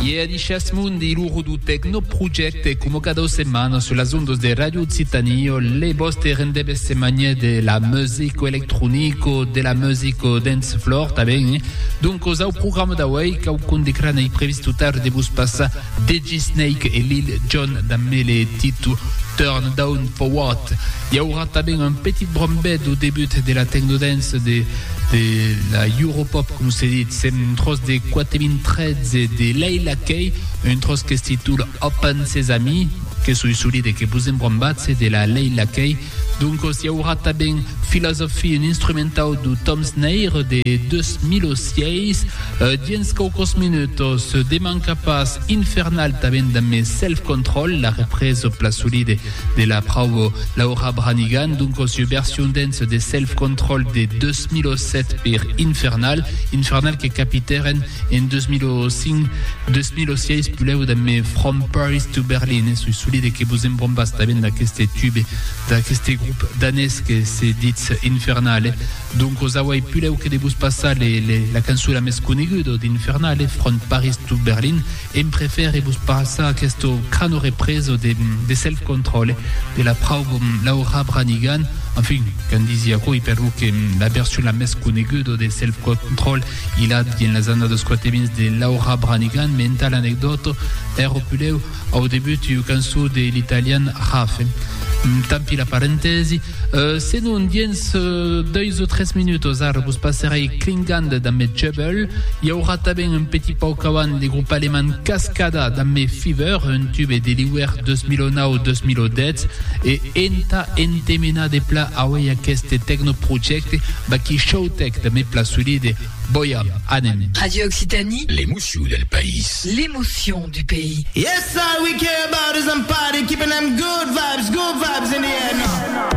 Iè a Dishas Mundi, lo Rudu Tecno Project e como cada setmana sur las ondas de Radio Occitanie, le vostre rendez-vous setmanier de la musique electronico, de la musique dance floor tanben. Eh? Donc, au programme d'auei, cau condigra nei previst tout tard de vos passar DJ Snake e Lil Jon da Mele Titu Turn Down For What. I aurà tanben un petit brombet au debut de la Technodance de de la Europop, com se dit, sent un tròç de 4013 de Leila Kay, un tròç que es titula Open Sesame, que soi solit e que vos embrombatz de la Leila Kay. Doncos i aurà tanben Philosophy, un instrumentau d'au Tom Snair de 2006. Dins quauquòs minutos, demanca pas, Infernal tanben damb Self Control, la represa au plat solide De la prauo, Laura Branigan, donc au sieu bersion dens de Self Control de 2007 per Infernal, Infernal que capitèren en 2005, 2006 pulèu damb me From Paris to Berlin, e soi solide que vos en brombas tanben d'aqueste tube, d'aqueste grup danés que se ditz Infernal. Donc os auei pulèu que de vos passar le, le, la cançona mès coneguda d'Infernal, From Paris to Berlin, Em prefère vos passar aqueste cano represo de Self Control de la frau Laura Branigan, enfin, qu'en disi aquò, e per lo que la version la mès coneguda de Self Control i la dien las annadas quatevins de Laura Branigan, me entà l'anecdòta ère pulèu au debut ua cançon de l'italian Rafe. Tant pi la parentèsi. Euh, senon, dins euh, deus o tres minutos, ara vos passerei Klingand da me Jebel. Hi haurà tanben un petit pauc avant le grup alemán Cascada da me Fever, un tube de l'hiver 2009-2010, e enta entemena de pla auei aqueste tecnoprojecte Baki Showtech da me pla solide. Boia, anem. Radio Occitanie. L'émotion del país. L'émotion du pays. Yes, all we care about is I'm party, keeping them good vibes, good vibes in the air now.